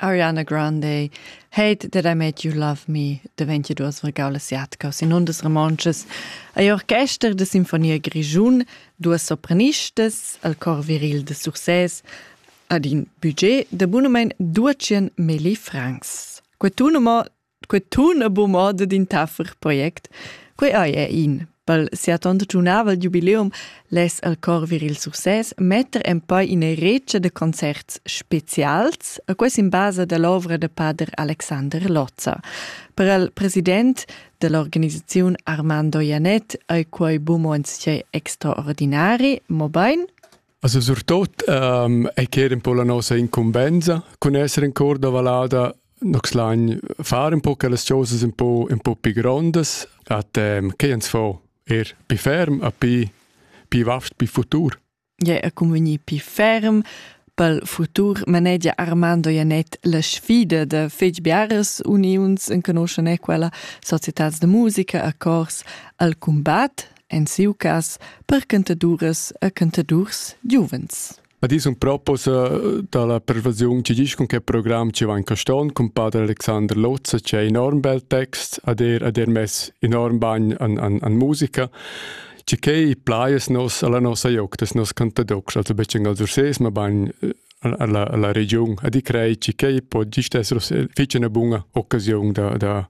Ariana Grande Hate that I made you love me deventi duas regau asiaticas in undas romontschas ei orchester de sinfonia grischun duas sopranistas al cor viril de Success ad in budget de bunumein 200 milli francs. Quetun mo quei tun a bu moda d'in taffer project. Quei ei è in pel sia tonda giunavel jubileum les al cor viril success metter en poi in recia de concerts specials a ques in base dell'ovra de pader Alexander Lozza. Per il president dell'organizzazione Armando Ianet ai quei bumons extraordinari, mo bein Also surtut ähm, ei ch'era un po la nossa incumbensa cun esser in cor da valada nox lain far un po che las cosas un po un po pi grondas at ähm, che ans fo er pi ferm a pi pi vast pi futur. Ja, a convegni pi ferm pel futur manegia Armando Janet la sfida da fetg biaras uniuns en conoscen quella societats de musica a cors al combat en siu cas per cantaduras e cantadurs giuvens. Ad is un proposa dalla pervasiun ci disch con che program ci va in Caston con padre Alexander Lozza c'è enorm bel text ad er ad er mess enorm bagn an, an, an musica ci che i plaies nos alla nossa joc des nos cantadocs also becen al surses ma bagn alla, alla region ad i crei ci che i po gist esser fece una bunga occasione da, da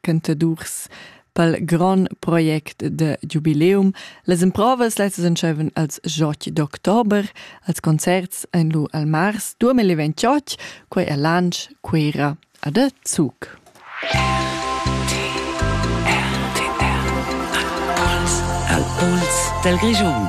cantadurs pel grand project de jubileum. Las improvas lezzas entscheiven als joch d'october, als concerts ein lu al mars 2028, quei a Lansch, Cuera a de Zug. Al Puls del Grischun.